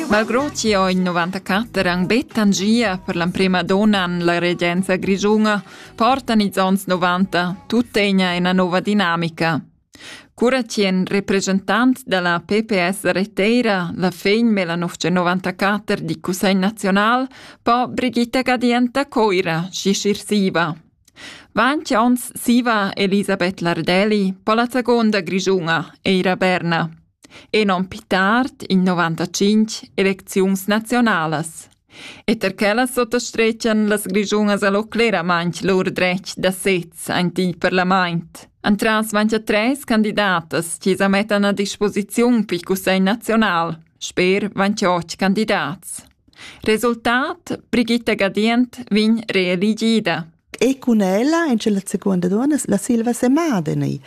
Malgrò chi ho in 94 han be tangia per l'emprema donna en la regenza grischuna, portan ils ons 90 tuttegna ina nova dinamica. Cura chi en representant da la PPS reteira la fegn Melanofce 94 di Cussegl Nazional po Brigitta Gadienta Coira si sirsiva. Vanci ons siva Elisabeth Lardelli po la seconda grischuna, Eira Berna. e non pi tard in 95 elecziuns nazionalas. E ter quellas sottastrechan las grischunas allo cleramaint lur dretg da sez ein il parlament. Antras 23 candidatas chi sa mettan a disposiziun pi cussegl nazional, sper 28 candidats. Resultat Brigitta Gadient vin reeligida. E cun ella, in la seconda donna, la Silva Semadeni.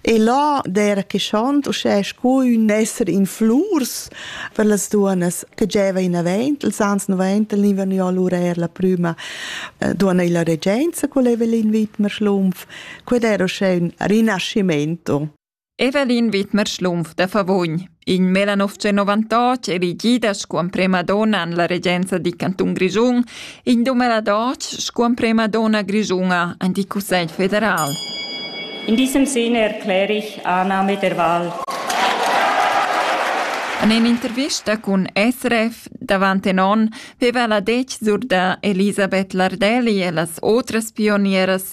E là der che schont uschè sco un esser in flurs per las duonas che gieva in avent, els ans 90 livan jo lur er la prüma eh, duonna illa regenza, qual eva l'invit mar schlumpf, qued era uschè un rinascimento. Evelin Widmer Schlumpf da Favogn, in melanov novantotg elegida sco emprema donna en la regenza dil cantun Grischun, in dumeladotg sco emprema donna grischuna en il Cussegl federal. In diesem Sinne erkläre ich Annahme der Wahl. En in'intervista cun SRF davant en onn veva la detg sur da Elisabeth Lardelli e las otras pionieras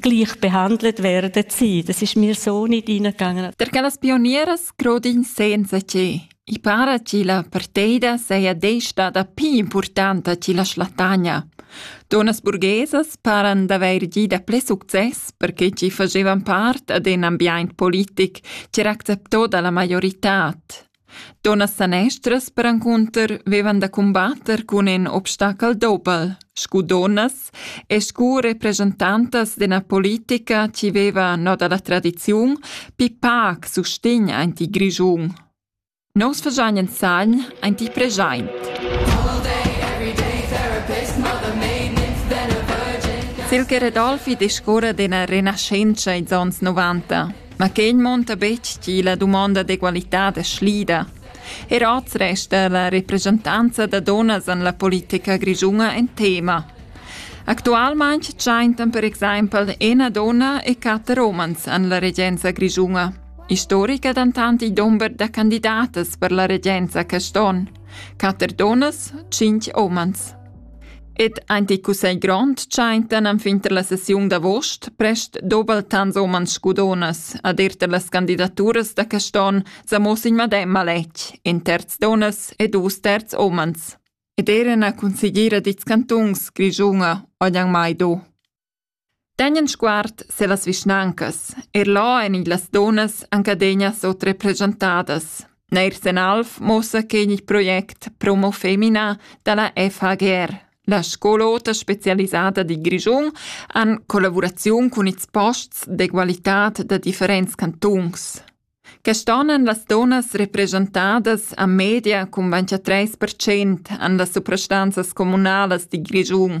gleich behandelt werden sie. Das ist mir so nicht reingegangen. Perché las pionieras grodin senza che. I para che la parteida seia desta da più importante che la Schlatagna. Donas burghesas paran d'avair gì da ple success perché ci facevan part ad un ambiente politic che era acceptò dalla maiorità. Dunnas sanestras perencunter vevan da cumbatter cun in obstachel doppel, scu dunnas e scu representantas d'üna politica chi veva no da la tradiziun pii pac sustegn aint il Grischun. Nus fagiain insagn aint il preschaint. Silke Redolfi discurra d'üna renaschentscha ins ons novanta. Ma quei munta betg tgi la dumonda d'egualitad è slida. Er oz resta la representanza da dunnas en la politica grischuna en tema. Actualmain tschentan per exempel ina donna e quatter umans en la regenza grischuna. Istorica dentant il dumber da candidatas per la regenza quest onn. Quatter dunnas, cinc umans. Ed ant il cussegl grond tschaintan enfin tar la sessiun d'avost prest doubel tants umans scudonas ad ir tar las candidaturas da quest'on sa mo sin medem maletg, in terz donnas e dus terz umans. Ed eran a consigliera dits cantuns Grigiunga oglian mai do. Tegnan sguard sur las vischnancas, eir là èn i las dunnas anc adegna sutrepreschentadas. Neir sen Alf muossa che igl project promo femina da la FHGR. La scol'ota specialisada di Grischun an collavuraziun cun ils posts d'egualitad da differents cantuns. Quest'on han las donas represchentadas a media cun 23% an las suprastanzas communalas di Grischun.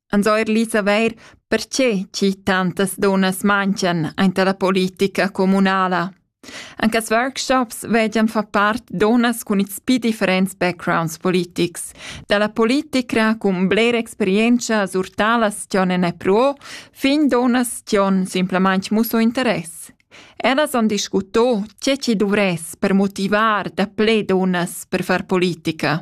ans ho eir lì savair perche chi tantas dunnas manchan aint la politica communala. Anche als workshops vegian far part dunnas cun ils pi differents backgrounds politics, dalla politicra cun bler experientscha sur talas chi'on en pro, fin dunnas chi'on simplamaing musso interess. Ellas han discuto tge chi duvress per motivar da ple dunnas per far politica.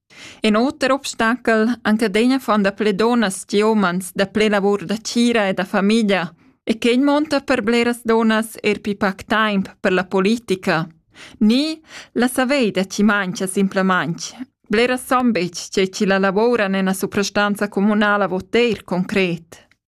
In oter obstachel Encadina fan dapli dunnas che umens dapli lavur da tgira e da famiglia e quei monta per bleras dunnas er pli pac temps per la politica. Ni la saver da chi mangia simplamain. Bleras san betg tge chi la lavoran en la suprastanza communala vot eir concret.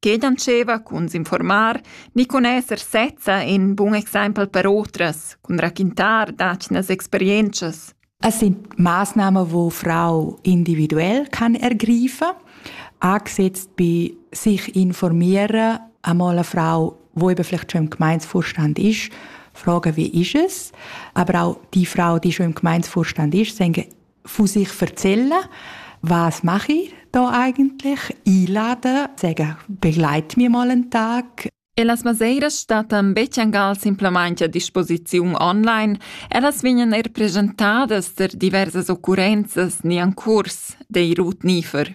che dandscheva cun s'informar ni cun esser sezza in bun exempel per otras, cun raquintar d'atgnas experientschas. Es sind Maßnahmen, die Frau individuell kann ergreifen kann, angesetzt bei sich informieren, einmal eine Frau, die eben vielleicht schon im Gemeindevorstand ist, fragen, wie ist es, aber auch die Frau, die schon im Gemeindevorstand ist, sagen Von sich erzählen, was mache ich da eigentlich? Einladen, sagen, begleite mich mal einen Tag. E las maseiras stattan betschangal simplamain a disposiziun online. Ellas vegnan er presentadas per diversas occurrenzas ni en curs, dei Ruth Niefer.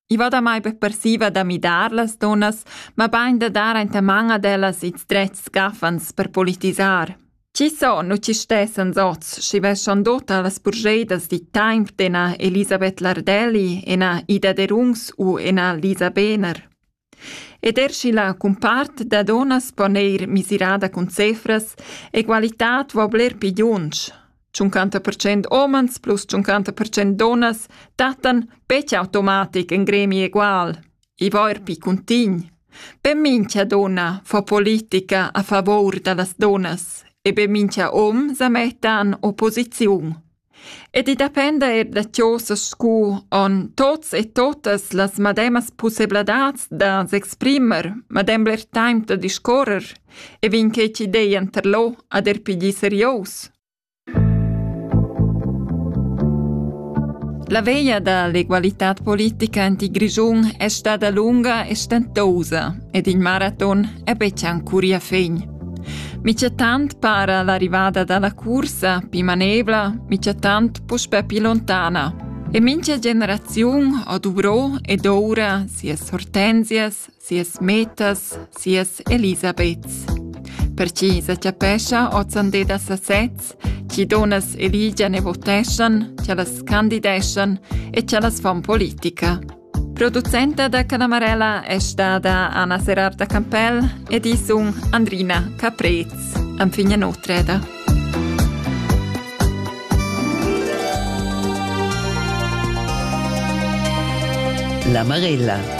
I va damai be persiva da midar las dunnas, mabain da dar enta man ad ellas ils drets scaffans per politisar. Chi son u chi stessan oz, schi veschan dota las burgeidas di temp d'ena Elisabeth Lardelli, ena Ida Derungs u ena Lisa Behner. Ed er schi la cumpart da donas pon eir misirada cun cefras, egualitad vo bler pigiunsch. 50% homens plus 50% donnas dattan betg automatic in gremi egual. I va er pi cuntign. Be mincha donna fa politica a favor da las donnas e be mincha om sa mettan opposiziun. Ed i dependa er da tiosas scu on tots e totas las mademas pussebladats da s'exprimer, madem bler taimp da discorrer – E vegn quei chi dei enter lò ad er pigli serios? La veia da l'egualitad politica en il Grischun è stada lunga e stentosa ed il maraton è betg ancora fin. Micetant para l'arrivada dalla cursa più manevla, micetant puspe più lontana. E mincha generaziun ha duvrò ed ora sias hortensias, sias metas, sias Elisabeths. Per chi sa chapescha ozande da sasez, chi donas eligian e voteschan, chi las candideschan e chi las fon politica. Producenta da Canamarella è stata Anna Serarda Campell ed i sun Andrina Caprez, anfigna notreda. La Marella